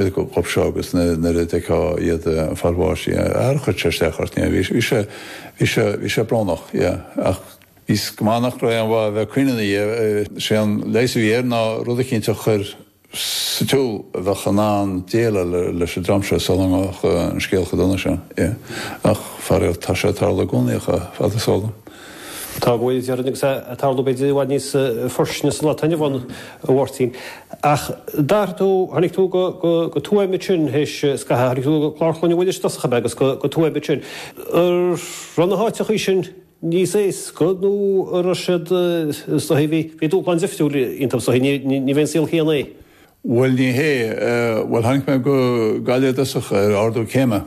job seo agus nuair a d'fheicfeá iad ag fáil bháis yeah ar chuir sé isteach ort yeah bhí bhí sé bhí sé bhí sé brónach yeah ach is cosúil nach raibh aon mhaith bheith ag caoineadh yeah sé an leigheas a bhí air ná rud éicint a chur sa siúl a bheadh in ann déileáil leis an dream seo sula mbeadh an scéal chomh dona sin yeah ach faraor tá sé ag tarlú i gcónaí ach fad is a Tá a bhfuil déarfainn agus é ag tarlú b'fhéidir i bhfad níos fairsinge sa lá atá inniu ann, a Mháirtín. Ach d'athraigh tú, tháinig tú go Tuaim ansin théis scaithimh, tháinig tú go Clár Chlainne Mhuiris dtosach ab ea agus go Tuaim ansin. Ar raibh na háiteachaí sin níos éasca nó ar raibh siad, is dóigh, bhí dúshlán difriúil iontub, is dóigh, níorbh é an saol céanna é? Bhuel, ní hé, bhuel, tháinig mé go Gaillimh dtosach ar ardú céime.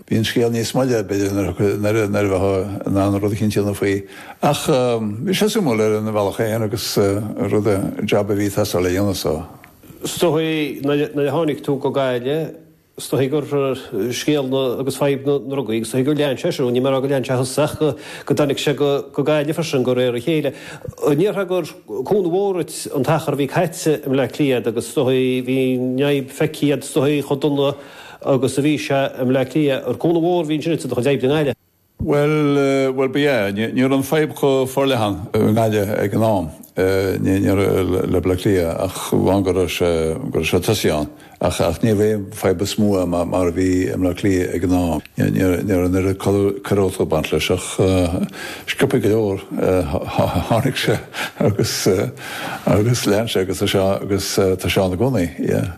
Bhí an scéal níos moille ar bith de nuair a bheifeá in ann rud eicínt a dhéanamh faoi ach bhí sé suimiúil ar an mbealach sin agus rud an jab a bhí tú ag traíáil a dhéanamh so. Is dóigh nuair a tháinig tú go Gaillimh, is dóigh gur scéal agus fadhb na ndrugaí agus is dóigh gur lean sé seo, ní móide gur lean sé seo ach go dtáinig sé go Gaillimh freisin de réir a chéile. Meas tú gur cúnamh mór duit an t-achar a bhí caite i mBleá Cliath agus is dóigh bhí neart feicthe agat is dóigh chomh dona agus a bhí sé i mBleá Cliath. Ar cúnamh mór a bhí ansin i do chuid oibre i nGaillimh. Bhuel, bhuel, ba ea. Ní raibh an fadhb chomh forleathan i nGaillimh ag an am, ní, ní raibh, le Bleá Cliath ach amháin go raibh sé, go raibh sé tosaithe ann. Ach, ach ní raibh aon fadhb chomh mór ann mar, mar a bhí i mBleá Cliath ag an am. Ní, ní, ní raibh an oiread coiriúlachta ag baint leis ach sciobtha go leor, tháinig sé agus, agus lean sé agus tá sé, agus tá sé ann i gcónaí, yeah.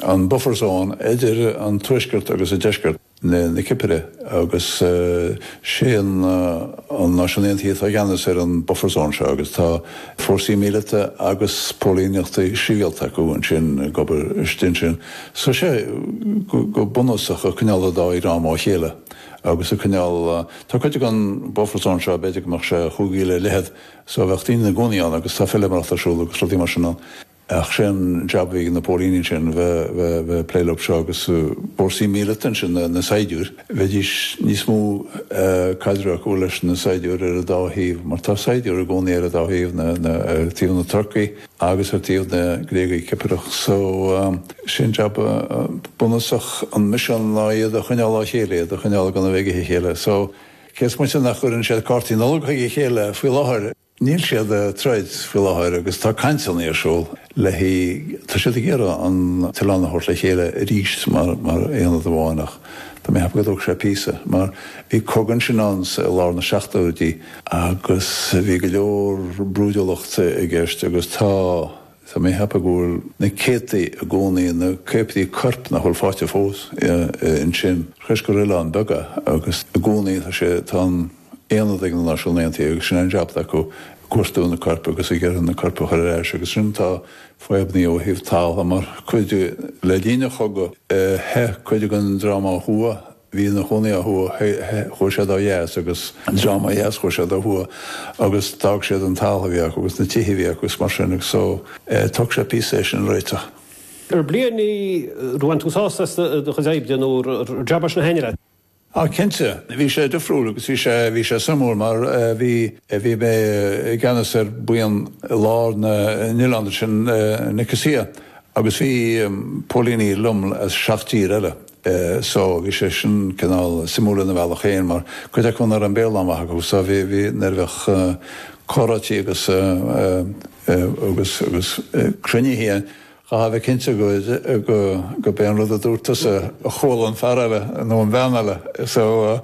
an buffer zone idir an tuaisceart agus an deisceart na Cipire agus sé na Náisiúin Aontaithe atá i gceannas ar an buffer zone seo agus tá fórsaí míleata agus póilíneacht sibhialta acu ansin ag obair istigh ansin. So sé go bunúsach ag coinneáil an dá dhream ó chéile agus ag coinneáil, tá cuid den buffer zone seo, b'fhéidir go mbeadh sé chúig mhíle ar leithead so bheadh daoine ina gcónaí ann agus tá feilméaracht ar siúl agus rudaí mar sin ann. Ach sé an jab a bhí ag na póilíní ansin bheith ag plé leob seo agus fórsaí míleata ansin, na saighdiúir, bheidís níos mó caidreamh acu leis na saighdiúir ar an dá thaobh mar tá saighdiúir i gcónaí ar an dá thaobh, ar taobh na Turcaigh agus ar taobh na Gréagaigh Cipireach. So sé an jab bunúsach an misean ná iad a choinneáil ó chéile, iad a choinneáil gan a bheith ag ithe a chéile. So cé is moite nach gcuireann siad cártaí Nollag chuig a chéile faoi láthair, Níl siad ag troid faoi láthair agus tá cainteanna ar siúl le tá siad ag iarraidh an t-oileán a thabhairt le chéile arís mar aonad amháin ach tá mé ag ceapadh go dtógfaidh sé píosa mar bhí cogadh ansin ann i lár na seachtóidí agus bhí go leor brúidiúlacht i gceist agus tá Tá mé ag ceapadh go bhfuil na céadtaí i gcónaí ina caopaití coirp nach bhfuil fáighte fós ansin. toisc gur oileán beag é agus i gcónaí tá sé, tá an aonad ag na Náisiún Aontaithe agus sin an jab acu, ag cuartú na coirp agus ag iarraidh na coirp a chur ar ais agus ansin tá fadhbannaí ó thaobh talamh mar cuid, le linn an chogadh, theith cuid den dream ó thuaidh. bhí ina chónaí ó thuaidh, chuaigh siad ó dheas agus an dream ó dheas chuaigh siad ó thuaidh agus d'fhág siad an talamh a bhí acu agus na tithe a bhí acu is mar sin agus so tógfaidh sé píosa é sin a réiteach. Ar bliain í ar bhain tú sásamh as do chuid oibre nó ar jab é a thaitin leat? Á cinnte, bhí sé difriúil agus bhí sé, bhí sé suimiúil mar bhí, bhí mé i gceannas ar bhuíon i lár an oileáin ansin Nicosia agus bhí póilíní liom as seacht dtír eile é so bhí sé sin cineál suimiúil ina bhealach féin mar cuid acu ní raibh an Béarla an-mhaith acu so bhí bhí nuair a bheadh comhráití agus agus agus cruinnithe chaithfeá a bheith cinnte go go gurb é an rud a dúirt tusa a chuala an fear eile nó an bhean eile so